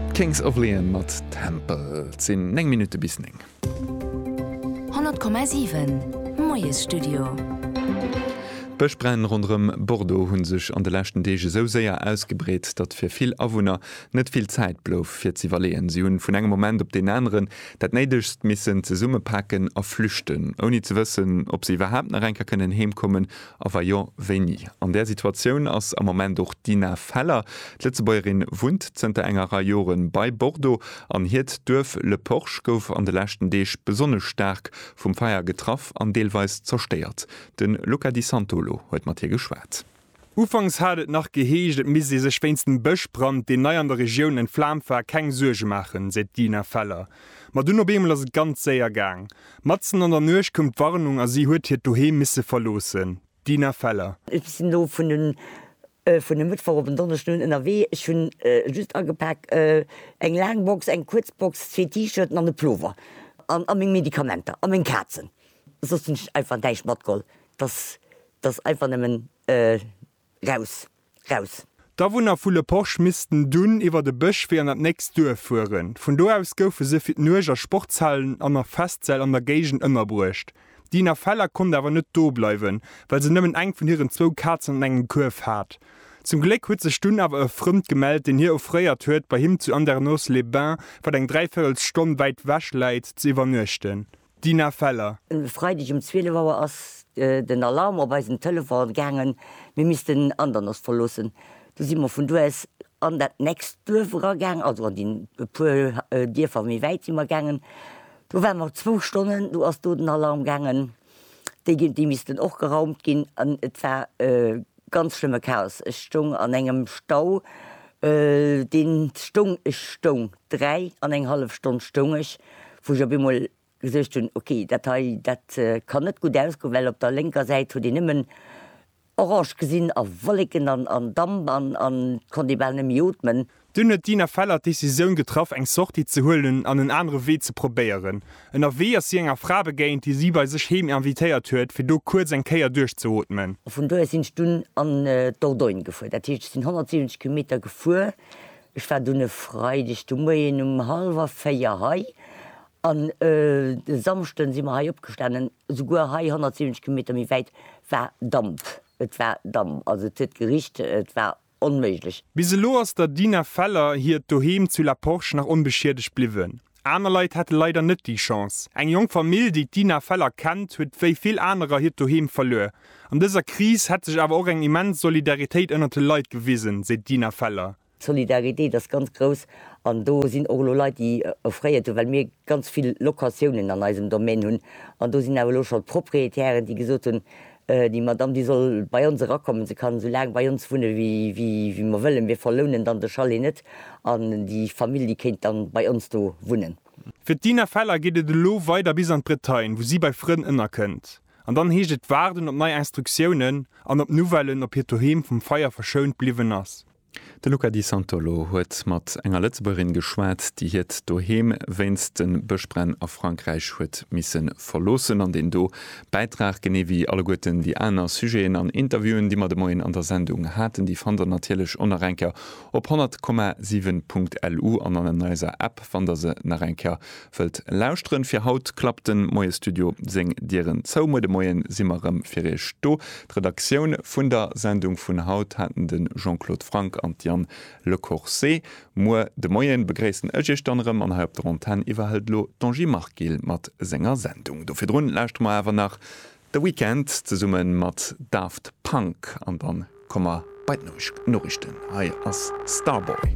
D'Kings of Leon mat Tempel. Et sinn 9 Minutte bis 9. 100,7, Moiesstudio. D'Bëschbränn ronderëm Bordeaux hu sech an de leschten Deeg esou séier ausgebreet, datt fir vill Awunner net vill Zäit blouf, fir ze iwwerleeën. Si hunn vun engem Moment op deen aneren dat Néidegst missen zesummepaken a flüchten, ouni ze wëssen, ob se iwwerhaapt nach eng Kéier kënnen heemkommen A wa jo, wéini? An där Situatioun ass am Moment och d'Ina Feller. D'Lëtzebuergerin wunnt zënter enger Rei Jore bei Bordeaux an hiert Duerf Le Porche gouf an de leschten Deeg besonnesch staark vum Feier getraff an deelweis zerstéiert. De Luca Di Santolo huet mat hir geschwat. Ufanks hat et nach geheescht, et misst ee sech wéinst dem Bëschbrand, deen nei an der Regioun entflaamt war, keng Suerge maachen, seet d'Ina Feller. Ma dunn op eemol ass et ganz séier gaang. Matzen an der Nuecht koum d'Warnung a si huet hiert Doheem misse verloossen. D'Dina Feller. Ech sinn elo vun e Mëttwoch op en Donneschden un ënnerwee. Ech hunn just agepak eng laang Box, eng kuerz Box, zwee T-Shirten an e Plover a meng Medikamenter a meng Kazen. Soss hunn ech einfach näischt matgeholl. Dass einfach nëmmen Raus! Raus! D'Awunner vu Le Porche missten dunn iwwer e Bësch Wee an dat nächst Duerf fueren. Vun do aus goufe se fir d'Nuecht a Sportshallen an a Festsäll an der Géigend ënnerbruecht. D'Dina Feller konnt awer net do bleiwen, well se nëmmen eng vun hiren zwou Kazen an engem Kuerf hat. Zum Gléck huet sech dunn awer e Frëmmt gemellt, deen hir offréiert huet, bei him zu Andernos-les-Bains, wat eng dräi Véirels Stonn wäit wech läit, ze iwwernuechten. Dina Feller. E Freideg um 12 Auer ass den Alarm op eisen Telefon gaangen, mir missten Andernach verloossen. Du si mer vun do aus an dat nächst Duerf era gaangen, also an déi e puer Dierfer méi wäit si mer gaangen. Do ware mer zwou Stonnen, du ass do den Alarm gaangen, déi missten och geraumt ginn an et war Ganz schlëmme Chaos, ech stoung an engem Stau, deen stoung, ech stoung, dräi an eng hallef Stonn stoung ech, wou ech op eemol gesuergt hunn, ok, dat hei, dat kann net gutt ausgoen, well op der lénker Säit huet een nëmmen orange gesinn a Wolleken an Damp an konnt ee bal net méi ootmen. Dunn huet d'Ina Feller d'Decisioun getraff, eng Sortie ze huelen an en anere Wee ze probéieren. Ënnerwee ass si enger Fra begéint, déi si bei sech heem invitéiert huet, fir do kuerz eng Kéier duerchzeootmen. A vun do aus sinn ech dunn an d'Dordogne gefuer. Dat heescht, ech sinn 170 Kilometer gefuer. Ech war dunn e Freideg de Moien um hallwer véier hei an e Samschden si mer hei opgestanen. Souguer hei, 170 Kilometer méi wäit, war Damp. Et war Damp, also et huet gericht, et war onméiglech. Bis elo ass der Dina Feller hiert Doheem zu La Porche nach onbeschiedegt bliwwen. Aner Leit hate leider net déi Chance. Eng jonk Famill, déi d'Dina Feller kennt, huet wéi vill anerer hiert Doheem verluer. An dëser Kris hätt sech awer och eng immens Solidaritéit ënnert de Leit gewisen, seet d'Dina Feller. D'Solidaritéit ass ganz grouss an do sinn och elo Leit, déi offréiert hunn, well mir ganz vill Locatiounen an eisem Domaine hunn. An do sinn awer elo schonn d'Propriétairen, déi gesot hunn, Déi Madame, déi soll bei ons erakommen, se kann esou laang bei ons wunne wéi mer wëllen, mir verlounen dann de Chalet net an déi Famill, déi kéint dann bei ons do wunnen. Fir d'Dina Feller geet et elo weider bis an d'Bretagne, wou si bei Frënn ënnerkënnt. An dann heescht et waarden op nei Instruktiounen an op Nouvellen, ob hiert Doheem vum Feier verschount bliwwen ass. De Luca Di Santolo huet mat enger Lëtzebuergerin geschwat, déi hiert Doheem wéinst de Bëschbränn a Frankräich huet misse verloossen. An deen do Bäitrag, genee wéi alleguerten déi aner Sujeten an Interviewen, déi mer de Moien an der Sendung haten, déi fannt der natierlech och nach eng Kéier op 100,7.lu an an eiser App, wann der se nach eng Kéier Wëllt lauschteren fir haut klappt den Moiestudio seng Dieren zou. Muer de Moien si mer rëm fir iech do. D'Redaktioun vun der Sendung vun haut haten den Jean-Claude Franck an d'Diane Lecourcé. Muer de Moien begréissen ech iech dann rëm an hei op der Antenn iwwerhëlt lo d'Angie Marguil mat senger Sendung. Do virdrun lauschteren mer awer nach The Weekend zesummen mat Daft Punk an dann komme mer bei d'Norichten. Hei ass Starboy.